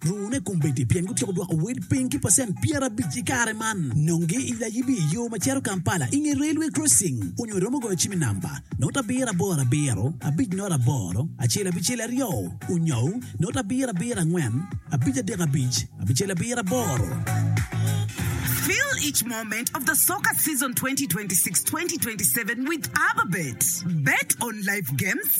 Rune kombeddi pien gutyeko dwoko wel piny ki pacent pyerabic i kare man. Nonge i layibi i yo ma cito Kampala i nge Railway Crossing onyo iromo goyo cim i namba, not abiro aboro abiro, abic not aboro, acel abicel aryo, onyou, not abiro abiro angwen, abic adek abic, abicel abiro aboro. Fill each moment of the soccer season twenty twenty six, twenty twenty seven with Ababet. Bet on live games.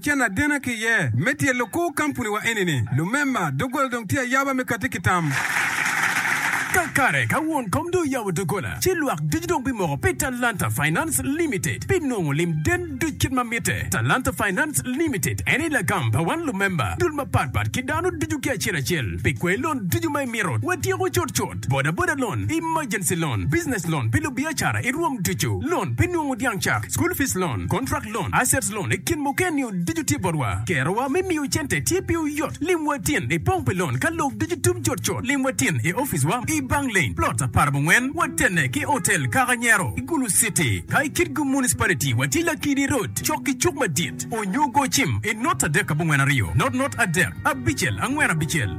Cen adena ki iye me tye lukur kampuni wa eni ni lumemba dogola dong tye ayaba me kati ki tam. Kakare ka won kom dong oyabo dogola ci lwak ducu dong bimoko pi Talanta Finance Limited pi nongo lim den duc kit ma mitte. Talanta Finance Limited eni lagam pa wan lumemba dul mapat pat ki dano ducu ki acel acel pi kwer lon ducu ma imito watyeko cut cut. Boda boda loan, emergency loan, business loan pi lubiacara i rwom ducu, loan pi nungu dyang cak, school fees loan, contract loan, assets loan i kin mukene-niu ducu tye botwa. Kerowa me miyo cente tye piwu yot. Limwa tin i pong pi loan ka lok ducu tum cut cut. Limwa tin i oficewa i Bang Lane, Plot aparabongwen, watenne ki Hotel Kaka Nyero i Gulu City. Ka i Kitgum Municipality, watye Lakidi Road, cok ki cuk madit, onyo go cim i not adek abongwen aryo, not not adek, abicel angwen abicel.